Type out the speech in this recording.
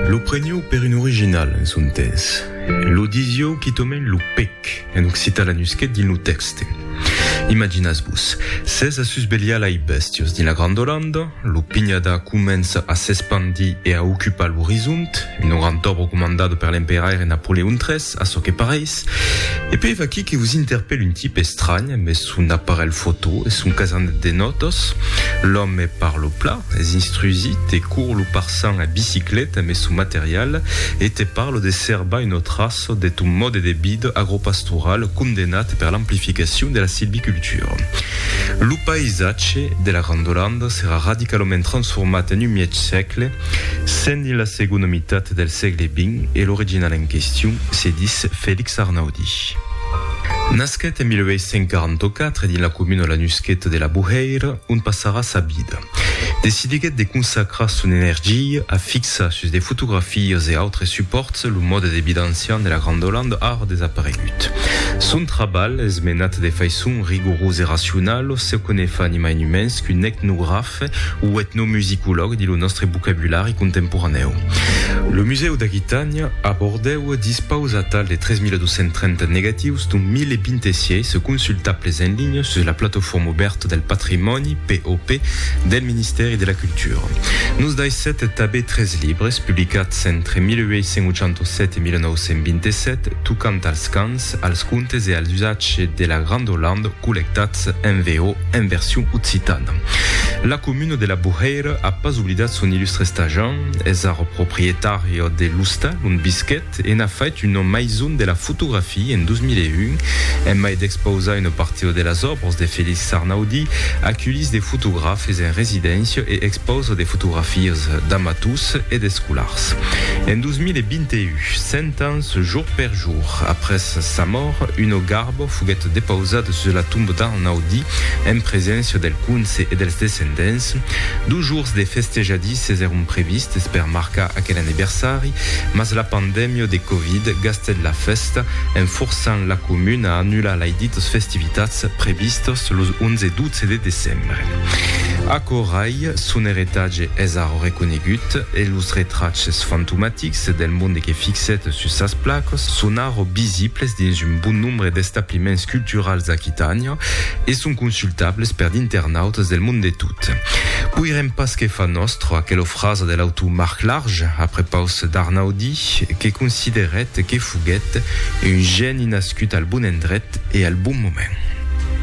Lo prenió per un original en son temps, e lo disió quitòmèn lo pèc en occitan lanusquet dins lo tèxte. Imaginatz-vos, s'es a susvelhar lai bèstios dins la Granda Olanda, lo pinhadar comença a s'espandir e a ocupar l'orizont, un orantòbre comandat per l'emperaire Napoleon iii, A çò que pareis, e puèi vaquí que vos interpèl un tipe estranh amb son aparelh fotò e son casanet de nòtas. L'òme parlo pla, es instrusit e cour lo parçan a bicicleta amb son material e te parlo de serbar un autre açò de ton mòde de vida agropastoral condenat per l'amplificacion de la silvicultura. Lo païsatge de la Grandolanda serà radicalament transformat en un mièg sègle Sendi la segona mitat del sègle vint e l'original en question se dis Felix Arnaudi. Nasquèt en 1844 dins la comuna lanusqueta de La Bohèira, ont passarà sa vida. Decidiguèt de consacrar son energia a fixar sus de fotografias e autres supòrts lo mòde de vida ancian de la Granda Olanda ara desaparegut. Son trabalh es menat de faiçon rigorosa e racionala, se que ne fa ni mai ni mens qu'un etnograf, Etnogràfe o etnomusicològ dins lo nòstre vocabulari contemporanèu. Lo Musèu d'Aquitània, a Bordèu, dispausa atal de 3.230 negatius d'un 1.026 consultables en linha sus la Plataforma Obèrta del Patrimòni, POP, del Ministèri de la Cultura. Nos daissèt tanben tres libres, publicats entre 1887 e 1927, tocant als cants, Grègas, als contes e als usatges de la Granda Olanda collectats en VO en version occitana. La comuna de la Bohèira a pas oblidat son illustre stajan, es ara proprietària de l'ostal ont visquèt e n'a fait una maison de la fotografia en 2001. En mai d'expausar una partida de las òbras de Félix Arnaudí, aculhís de fotografes en residéncia e expausa de fotografias d'amators e d'escolars. En 2021, Temps jour per jour. Après sa mòrt, Uno Garbo foguèt depausat sus la tomba d'Arnaudi, en preséncia del conse e dels descendents. Dos jours de festejadisses èron previstes per marcar aquel anniversari, mas la pandèmia de Covid gastèt la fèsta, en forçant la comuna a annular lai ditas festivitats previstas los 11 e 12 de decembre. Aquò rai, son eritatge es ara reconegut e los retraches fantomatics, Fixes del monde que fixèt sus sas placas son ara visibles dins un bon nombre d'establiments culturals d'Aquitània e son consultables per d'internautas del monde de tot. Poirem pas que far nòstra aquela frasa de l'autor Marc Large, a prepaus d'Arnaudi, que considerèt que foguèt un gèni nascut al bon endret e al bon moment.